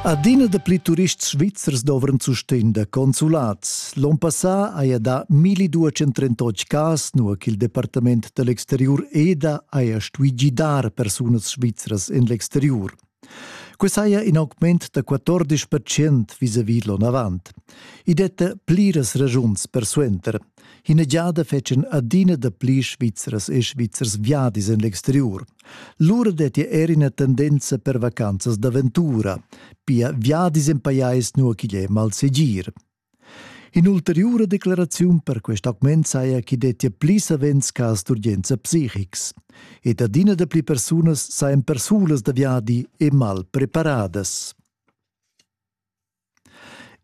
Adina dapli turists svizzers dovran sustegn da consulats. L'on passà haja dà 1238 cas, nua ch'il departament da l'exteriur EDA haja stuì gidar persunas svizras en l'exteriur. Quest haja in augment da 14 percent vis-à-vis l'onavant. I detta pliras ragiuns persuenter. Ina giada fetschan adina dapli Svizras e Svizzers viadis en l'exteriur. Lura detti er ina tendenza per vacanzas d'aventura, pia viadis en pajais nua ch'igl è malsegir. In'ulteriura declaraziun per quest augment saja ch'i dettia pli savens cas d'urgenza psichics ed adina dapli persunas sajan persulas da viadi e mal preparadas.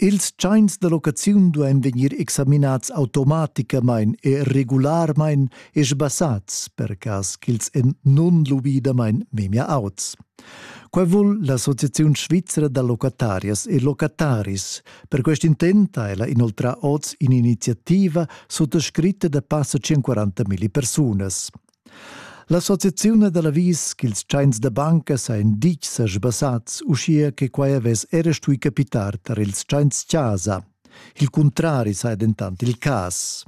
Ils tschains da locaziun duain vegnir examinats automaticamain e regularmain e sbassats per cas ch'ils èn nunlubidamain memia auts. Quai vul l'Associaziun svizra da locatarias e locataris. Per quest intent ha ella inoltrà oz in'iniziativa suttascritta da passa 140 milli persunas. L'associaziun da l'avis ch'ils tschains da banca sajan ditg sa sbassats, uschia che quai avess era stui capitar tar ils tschains-chasa. Il cuntrari saja dentant il cas.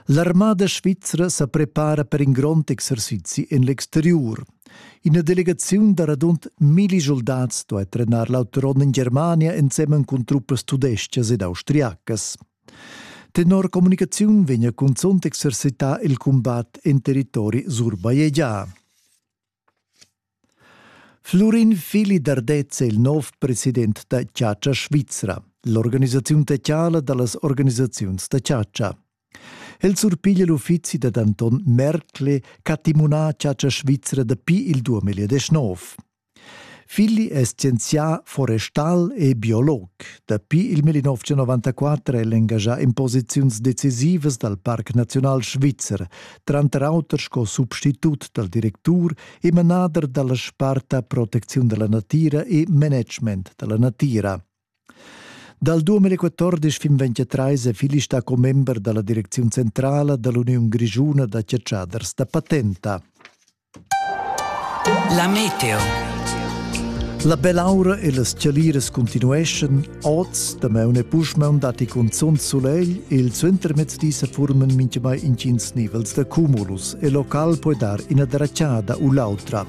L'armada svizra sa prepara per in grond exercizi en l'exteriur. Ina delegaziun da radund milli soldats duai trenar l'auto ron en Germania ensemen cun truppas tudestgas ed austriacas. Tenor communicaziun vegna cunzunt exercità il cumbat en territori surbajegià. Flurin Fili Dardez è il nov president da Chatscha Svizra, l'organisaziun techiala da las organisaziuns da chatscha. El surpiglia l'uffizi da Anton Merkle ch'ha timunà Chatscha Svizra dapi il 2019. Filli es scienzià forestal e biolog. Dapi il 1994 è el engagià in posiziuns decisivas dal Parc Naziunal Svizzer, tranter auter sco substitut dal directur e manader da la sparta Protecziun da la natira e Management da la natira. Dal 2014 fin 2023 è Fili stà commember da la direcziun centrala da l'Uniun grischuna da chatschaders da patenta. La meteo. La belaura e las chaliras continueschan oz, damaun e pusmaun datti cunzunt sulegl e il suentermezdi se forman mintgamai intgins nivels da cumulus e local puoi dar ina dracciada u l'autra.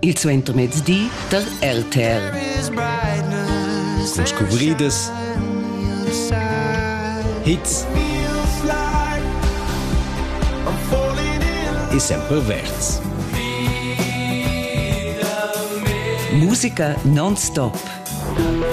il suentermezdi tar RTR. Cun scuvridas, hits e sempre verds. Musica non-stop.